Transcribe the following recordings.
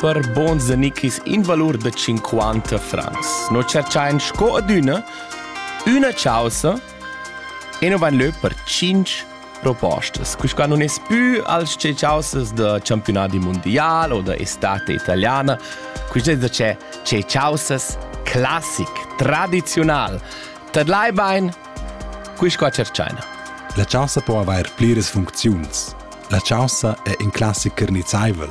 per bons da nichis in valur da 50 francs. No cerchain sco adüna üna chausa e no van lö per 5 propostas. Quisquà non es più als che chausas da campionati mondial o da estate italiana, quist es da c'è ce chausas classic, tradizional. Tadlai bain, quisquà cerchaina. La chausa po avair pliras funcziuns. La chausa è in classic carnizzaivel,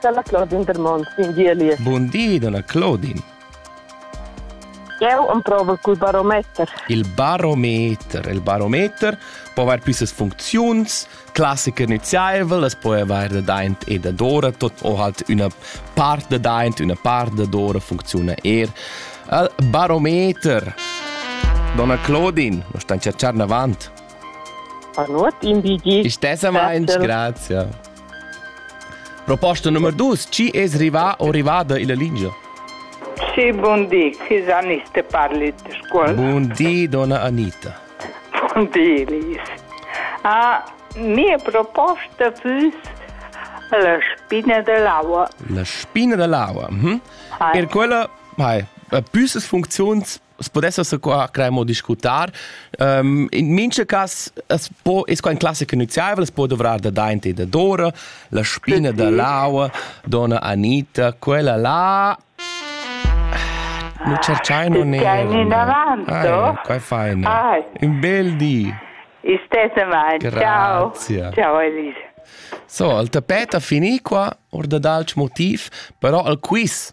Dalla Claudine Dermont in Gielie. Bun di, donna Claudine. Eu emprovo cul barometer. Il barometer. Il barometer po avair püssas funcziuns, classica nüziaivel, es po avair dadaint e dadora, tot o halt üna part dadaint, üna part dadora funcziuna eir al barometer. Donna Claudine, nos stan cerchar navant. Panuot in bigi. Istessamaint, grazie. Proposta nummer 2. Chi es rivà o rivada illa lingia? Sì, buon di. Chi sa Anita parli de scuola? Buon di, donna Anita. Buon di, Lies. Ah, mia proposta fus la spina dell'aua. La spina dell'aua. Mhm. Ah. Per quella, hai, püssas funziuns pudesse se qua cremo discutar. Um, in mincha cas es po es qua in classica iniziavel, es po dovrar da daint e da dora, la spina da l'aua, donna Anita, quella là No cercai non era. Stai davanto? Ah, qua fai ne. Ah. Un bel di. Istesse mai. Ciao. Ciao Elisa. So, il tapet ha finì qua, or da dalch motiv, però il quiz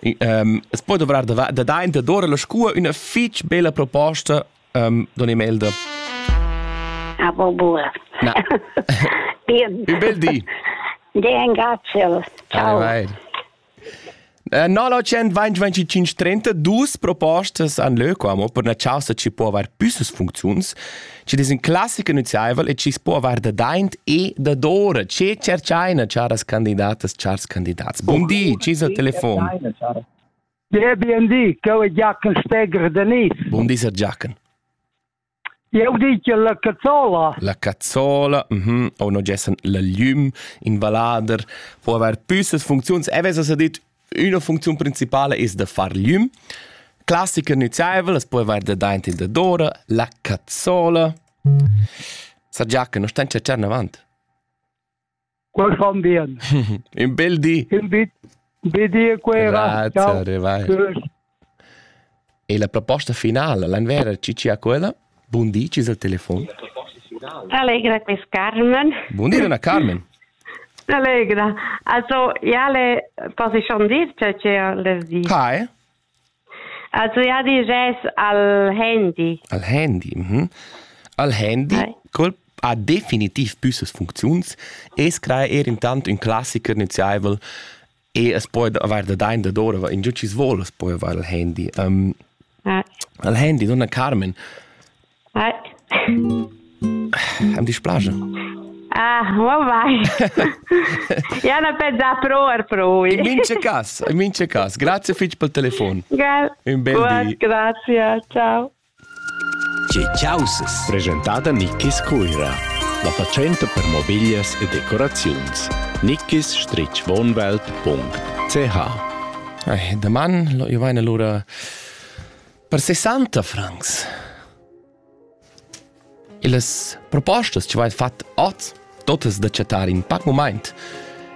Es poi dovrar da daint da dora la scua üna fich bella proposta um, don Imelda. Ah, bo bura. Na. Bien. Un bel di. Bien, grazie. Ciao. Vai, vai. 925 30 dus propostas an leu qua mo per na chausa ci può aver püssas funcziuns Ed es ün classicher nüziaivel e chi's po avair dadaint e dadora. Che tscherchaina charas candidatas, chars candidats? Bun di, chi es al telefon? Ja, bun di, co è Giachen Steger Denis. Bun di, Sir Giachen. Eu dice la cazzola. La cazzola, mhm, o non gessen la llüm in vallader, può aver püssas funcziuns. E vesa s'ha dit Üna funcziun principala es da far glüm. Classica nüzaivel as po avair dadaint il dadora, la cazzola. Sa Giachen, nu stain chatschar avant? Quel fan bien. Un bel di. Un bel di a Cuera. Grazie, arrivai. E la proposta finala l'envera chi chi ha quella? Bun di, chi es al telefon? Allegra quis Carmen. Bun di, Donna Carmen. Allegra. Also, ja le posso schon dir che che le di. Hi. Also ja di res al handy. Al handy. Mhm. Al handy Hi. col ha definitiv püssas funcziuns e scrai er intant ün classiker nüziaivel E es poi avair da dain dadora in giò chi's voul as poi avair al handy. Um, al handy, donna Carmen. Am dispiace. Ah, ma vai. Ja na pensà pro ar pro. In mince cas, in mince cas. Grazie fitch pel telefon. Un bel di. Grazie, ciao. Tge chaussas? Presentada Nickis Cuira. La fatschenta per mobiglias e decoraziuns. nickis-wohnwelt.ch Ei, daman lo io vaina lura per 60 francs. E las propostas che vai fat oz, totas da chattar in pac moment,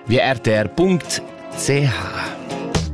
via rtr.ch.